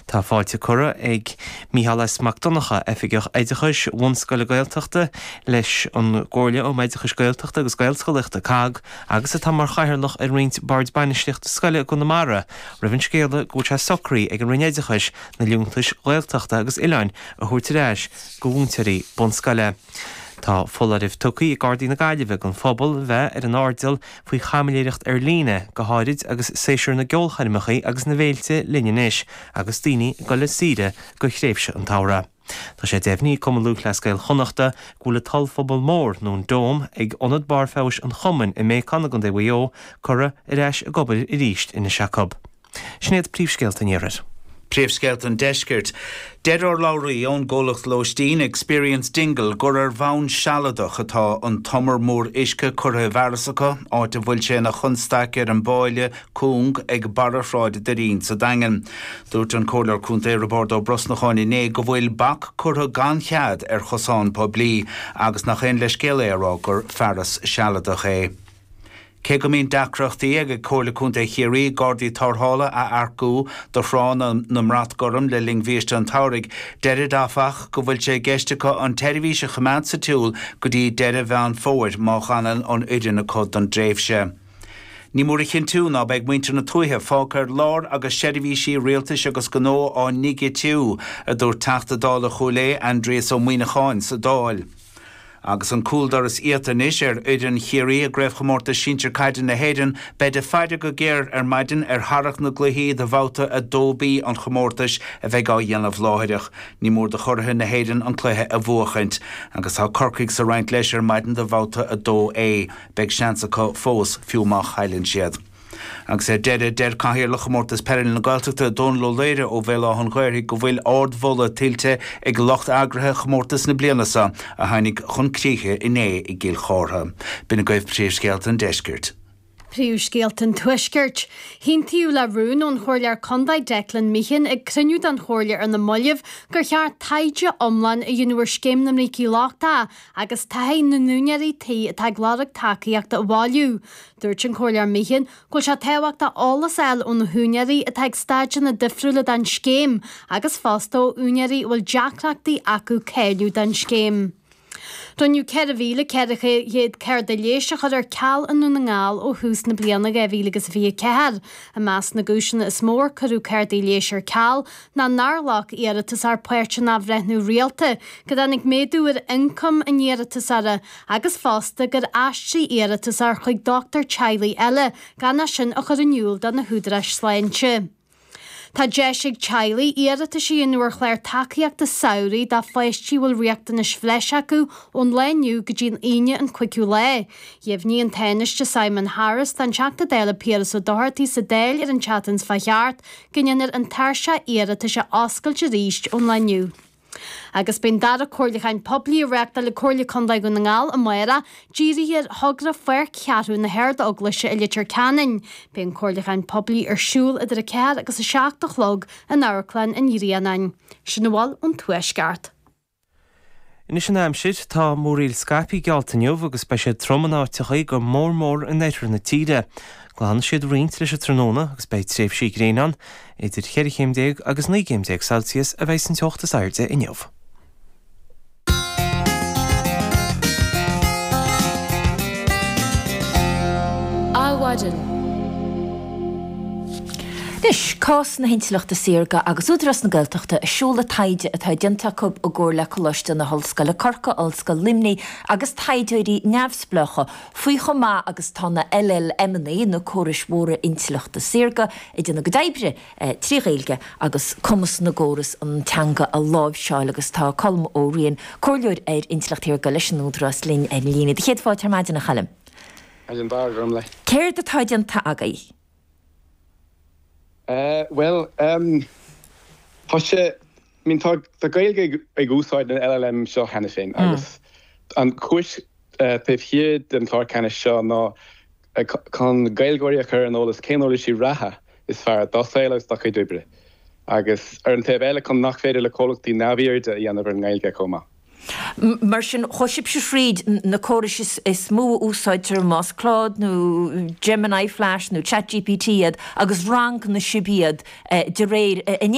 Tá fáilte curtha ag Micheál S Mac Donnacha, Oifigeach Oideachais Bhunscoile Gaeltachta, leis an gComhairle um Oideachais Gaeltachta agus Gaelscolaíochta, COGG, agus atá mar Chathaoirleach ar roinnt Boird Bainistíochta Scoile i gConamara, roimh an scéala go bhfuil sé socraithe ag an Roinn Oideachais na liúntais Ghaeltachta agus Oileáin a thabhairt ar ais go mhúinteoirí bunscoile. Tá foláireamh tugtha ag Gardaí na Gaillimhe don phobal bheith ar an airdeall faoi chaimiléireacht ar líne, go háirid agus saesúr na gceolchoirmeacha agus na bhféilte linn anois agus daoine ag dul ar saoire go thréimhse an tsamhraidh. Tá sé deimhní ag Cumann Lúthchleas Gael Chonnachta go bhfuil an t-ollphuball mór, nó an Dome, ag Ionad Barr Feabhais an Chumainn i mBéacán i gContae Mhaigh Eo curtha ar ais ag obair arís anois acu. Sin iad príomhscéalta an Iarthair. Príomhscéalta an Deiscirt. Deir urlabhraí ón gcomhlacht lóistín Experience Dingle gur ar bhonn sealadach atá an t-umar mór uisce curtha i bhfearas acu, áit a bhfuil sé ina chonstaic ar an bpáille cúng ag barra Shráid Doirín sa Daingean. Dúirt an Comhairleoir Contae Roibeárd Ó Brosnacháin inné go bhfuil bac curtha gan chead ar chosán poiblí agus nach aon leithscéal é a rá gur fearas sealadach é. Cé go mbíonn deacrachtaí ag ag Comhairle Contae Chiarraí Gardaí Tárrthála a earcú do thránna na mBrat Gorm le linn bhiaiste an tsamhraidh, deirid áfach go bhfuil sé i gceist acu an tseirbhís a choimeád sa tsiúl go dtí deireadh Mheán Fómhair má fhanann an fhoireann acu don dtréimhse. Ní mór a chinntiú ná beidh muintir na tuaithe fágtha ar lár agus seirbhísí rialtais agus gnó á ndigitíú, a dúirt Teachta Dála Chúil Aodha Aindrias Ó Muíneacháin sa Dáil. Agus an cúldoras iata anois ar fhoireann Chiarraí i gCraobhchomórtas Sinsir Caide na hÉireann, beid ag faire go géar ar maidin ar tharrac na gcluichí do bhabhta 2B an chomórtais a bheidh á dhéanamh láithreach. Ní mór do churaithe na hÉireann an cluiche a bhuachaint, agus tá Corcaigh sa roinnt leis ar maidin do bhabhta 2A. Beidh seans acu fós, fiú má chailleann siad. Agus ar deireadh, deir Cathaoirleach Chomórtas Peile na Gaeltachta, Dónal Ó Laoire ó Bhéal Átha'n Ghaorthaidh go bhfuil ardmholadh tuillte ag lucht eagraithe chomórtas na bliana seo a tháinig chun críche inné i gCill Chártha. B'in agaibh príomhscéalta an deiscirt. Príomhscéalta an tuaiscirt. hAontaíodh le rún ón Chomhairleoir Condae Declan Meehan ag cruinniú den Chomhairle ar na moillibh gur cheart taighde iomlán a dhéanamh ar Scéim na mBrící Lochtacha agus taithí na n-úinéirí tí atá ag lorg tacaíochta a bhailiú. Dúirt an Comhairleoir Meehan go bhfuil sé tábhachtach eolas a fháil ó na húinéirí atá ag staideanna difriúla den scéim agus fosta ó úinéirí a bhfuil deacrachtaí acu cáiliú don scéim. Rinneadh 4,400 cárta leighis a chur ar ceal i nDún na nGall ó thús na bliana 2024. I measc na gcúiseanna is mó ar cuireadh cártaí leighis ar ceal ná nár ghlac iarratasóir páirt in athbhreithniú rialta, go dtáinig méadú ar ioncam an iarratasóra, agus fosta gur aistrigh sí iarratas chuig dochtúir teaghlaigh eile gan é sin a chur in iúl do na húdaráis sláinte. Tá deis ag teaghlaigh iarratais a dhéanamh ar chlár tacaíochta samhraidh dá pháistí a bhfuil riachtanais bhreise acu ón lá inniu go dtí an Aoine an 5ú lá. Dheimhnigh an Tánaiste Simon Harris don Teachta Dála Piaras Ó Dochartaigh sa Dáil ar an tseachtain seo caite go ndéanfar an tairseach iarratais a oscailt arís ón lá inniu. Agus beidh an dara comhairliúchán poiblí á reáchtáil ag Comhairle Contae Dhún na nGall amáireach dírithe ar thogra Pháirc Cheathrú na hArdeaglaise i Leitir Ceanainn. Beidh an comhairliúchán poiblí ar siúl idir 4 agus 7 a chlog in Amharclann an Ghrianáin. Sin a bhfuil ón Tuaisceart. Anois an aimsir, tá múraíl scaipthe geallta inniu agus beidh siad trom in áiteachaí go mór mór in oirthear na tíre. Glanfaidh siad roinnt leis an tráthnóna agus beidh tréimhsí gréine ann. Idir cheithre chéim déag agus naoi gcéim déag Celsius a bheidh an teocht is airde inniu. Adhmhaidin. Anois, cás na hintleachta saorga agus tá Údarás na Gaeltachta ag seoladh taighde atá déanta acu i gcomhar le Coláiste na hOllscoile Corcaigh, Ollscoil Luimnigh agus taighdeoirí neamhspleácha faoi chomh maith agus atá na LLManna, na Córais Mhóra Intleachta Saorga, ag déanamh a gcuid oibre trí Ghaeilge agus cumas na gcóras an teanga a láimhseáil agus tá Colm Ó Riain, Comhairleoir ar Intleacht Shaorga leis an Údarás linn ar an líne. Sé do chéad fáilte ar maidin, a Choilm. Céard atá déanta agaibh? Bhuel, tá sé, I mean, tá Gaeilgeoirí ag úsáid na LLManna seo cheana féin agus an chúis taobh thiar den chlár ceannais seo ná chun Gaeilgeoirí a chur ar an eolas cén uirlisí reatha is fearr dá saol agus dá gcuid oibre agus, ar an taobh eile, chun nach féidir le comhlachtaí neamhaird a dhéanamh ar an nGaeilge chomh maith. Mar sin, chuaigh sibhse thríd na córais is mó a úsáidtear, más Claude nó Gemini, Flash nó Chat GPT iad, agus rangaigh sibh iad de réir a